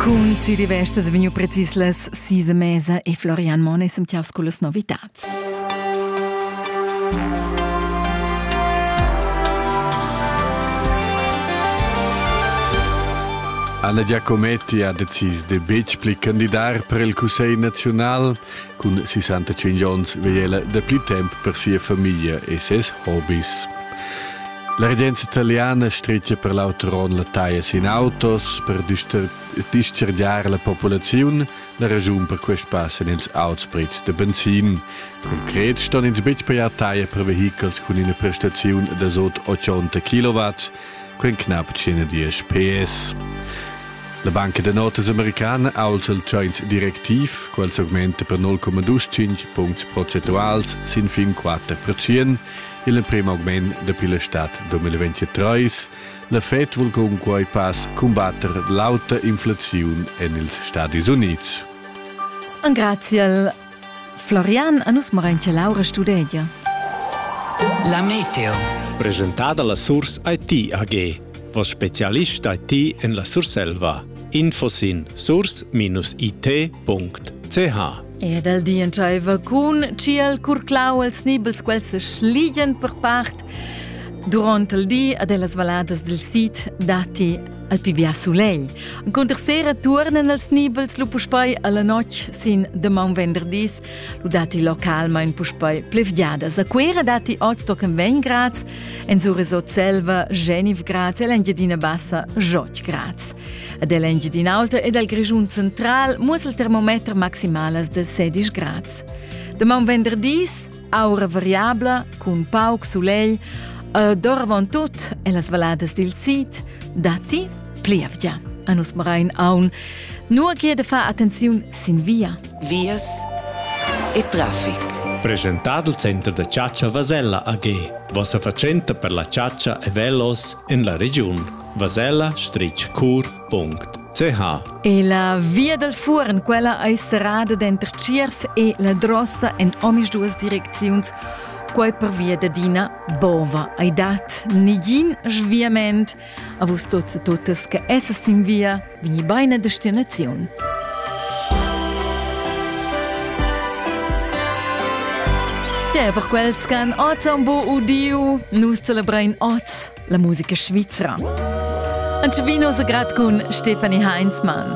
Cun Südi Vestas vegnu precis las sis e mesa e Florian Monn è semtiaus con las novitats. Anna Giacometti ha decis de betg pli candidar per il Cussegl nazional. Cun 65 onns vegl ella de pli temp per sia famiglia e ses hobbies. La regenza italiana stretga per l'auter onn la taglia sin autos per dischargiar la populaziun la ragiun per quest pass en ils auts prezs da benzin. Concret ston ins betg pajar taglia per vehichels cun ina prestaziun da sot 80 kW, quen knapp 110 PS. La banca da notas americana aulza il Chinese directiv, quel augmenta per 0,25 punts procentuals sin fin 4%, il prem augment dapi l'estat 2023. La Fed vul cunquai pas cumbatter l'auta inflaziun en ils Stadis Unids. Graziel. Florian a nus morain che Laura studegia. La meteo. Presentada la Source IT AG. Vos specialist IT en la Surselva. Info sin source-it.ch Ed el di entscheiva cun tschiel curclau els nibels quels se schligien per part. Duront il di ad las valadas del sid datti al pi bia sulegl. Cunter sera turnen els nibels lu puspei alla notg sin de maun venderdis, lu datti localmein puspei plevgiadas. A Cuera datti oz tochen 20 grads, en Sur Resot Selva 19 grads e l'Engiadina Bassa 8 grads. Ad el Engiadin'Alta ed al Grischun central muossa il termometer maximalas de 16 grads. Demaun venderdis, aura variabla, cun pauc sulegl, ed orvon tut e las valadas dil sid, datti plievgia. A nus marain aun, nur che de far attenziun sin via. Vias e traffic. Presentad il center da chatscha Vasella AG. Vossa fatschenta per la chatscha e velos en la regiun. Vasella stritg cur.ch La via dal Fuorn, quella ei serrada denter Tschierf e la Drossa en omisduas direcziuns. Quei pervia d'adina bova ei dat negin sviament. A vus tots e totes che essas in via, vegni beina destinaziun. Te per quels che han oz un bo udiu, nus celebrein oz la musica svizra. An Civino se grad cun Stefanie Heinzmann.